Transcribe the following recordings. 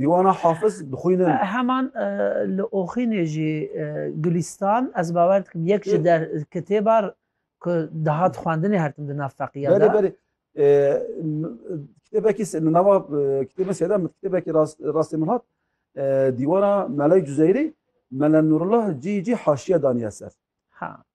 Dîwana Hafiz dixwînin. Heman li Oxînê jî Gulîstan ez bawer dikim yek ji der kitêba ku dihat xwendinê her tim di nav feqîya de. Berê berê kitêbekî li nava kitêbên sêde min kitêbekî rastê min hat dîwana Melay Cuzeyrî Mela Nurullah cî cî haşiye daniye ser.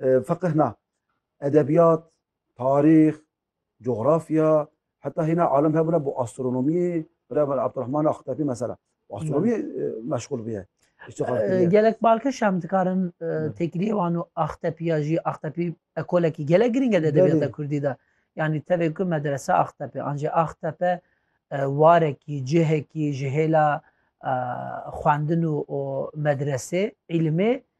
Feqih na, edebiyat, tarîx, coğrafya, heta hîna alim hebûne bo astronomiyê, bira min Abdurrahman Axtepî mesela. Astronomiyê e, meşgul bûye. İştîxal kiriye. Gelek balkış hem dikarin tekiliyê wan û Axtepiya jî Axtepî ekolekî gelek girîng e di edebiyata Belê. Kurdî de. Yanî tevê ku medrese Axtepe an jî Axtepe e, warekî, cihekî ji hêla e, xwendin û û medresê, îlimê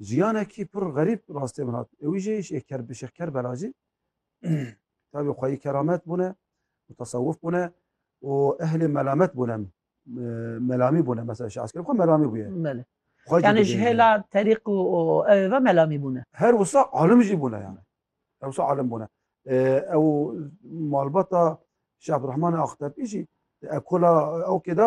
Jiyanekî pir xerîb rastê min hat. Ewî jî Şêxker bi Şêxker Bela jî tevî xweyî keramet bûne û tasewuf bûne û ehlê melamet bûne melamî bûne mesela şi eskerê xwe melamî bûye. Belê. Xwe jî Yani ji dibêje. hêla terîq û û ew ve melamî bûne. Her wisa alim jî bûne yani. Her wisa alim bûne. Ee, Ew malbata Şeh Abdurrahman Aqtepî jî di ekola ewkê de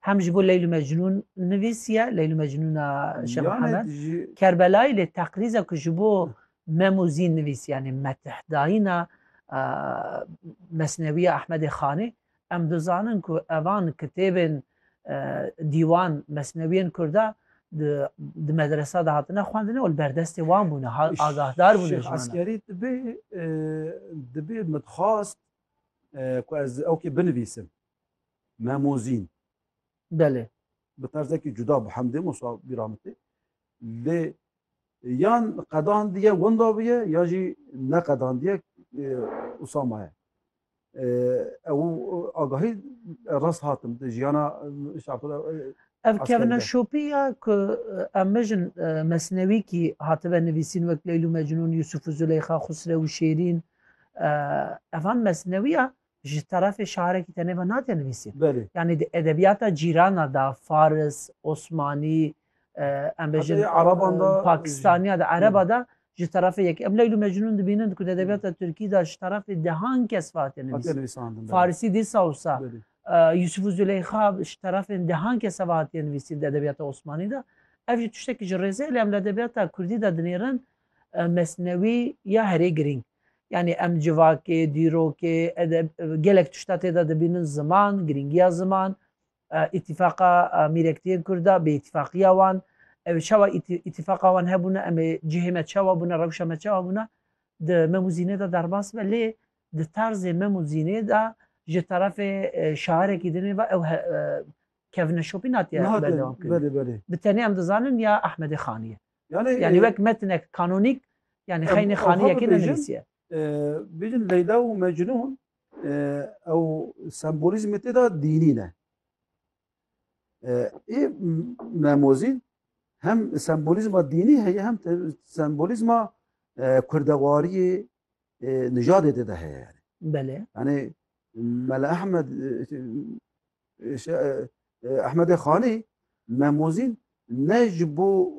Hem ji bo Leyl û Mecnûn nivîsiye, Leyl û Mecnûna Şeh Mihemed Kerbelayî lê teqrîza ku ji bo Mem û Zîn nivîsiye yanî methdayîna Mesnewîya Ehmedê Xanî em dizanin ku evan kitêbên dîwan mesnewîyên kurda di medresa de hatine xwendin û li ber destê wan bûne agahdar bûne ji wan. Eskerî dibê dibê min dixwast ku ez ew kê binivîsim. Memozîn. Belê. Bi terzekî cuda bi hemdê Musa Bîramitê. Lê yan qedandiye winda biye ya jî neqedandiye Usama ye. Ew agahî rast hatim di jiyana şapira Ev kevine şopî ya ku em mijin mesnewî kî hatibe nivîsîn wek Leylû Mecnûn, Yûsûfû Zuleyxa, Xusrewû Şêrîn evan mesnewî ya ji terefê şarekî tenê ve nate nivîsîn. Belê. Yanî di edebiyata cîrana da Faris, Osmanî, em bêjin Heta yê Ereban de, e, Pakistaniya de, Ereba de ji terefê yek. Em Leyl û Mecnûn dibînin ku di edebiyata Tirkî de ji terefê dehan kes ve hate Hatiye nivîsîn. nivîsandin. belê. Farisî dîsa wisa. Belê. E, Yusuf û Züleyxa ji terefên dehan kese ve hatiye nivîsîn di edebiyata Osmanî de. Ev jî tiştekî ji rêzê lê em li edebiyata Kurdî de dinêrin e, Mesnewî ya herê girîng. Yanî em civakê, dîrokê, edeb gelek tişta tê de dibînin ziman, girîngiya ziman, îtîfaqa mîrektiyên Kurd de, bêîtîfaqiya wan, ew çawa îtîfaqa wan hebûne, em ê cihê me çawa bûne, rewşa me çawa bûne di mem û zînê de derbas be lê di tarzê mem û zînê de ji terefê şairekî din ê ve ew kevneşopî natiye berdewamkirin. Bi tenê em dizanin ya Ehmedê Xanî ye. Yanî wek metinek kanûnîk yanî xeynî xaniyekê nenivîsiye. Bêjin Leyla û Mecnûn ew sembolîzmê tê de dînî ne. Ê memozîn hem sembolîzma dînî heye hem sembolîzma kurdewariyê nijadê tê de heye yani. Belê. Yani Mele Ahmed Ahmedê Xanî memozîn ne ji bo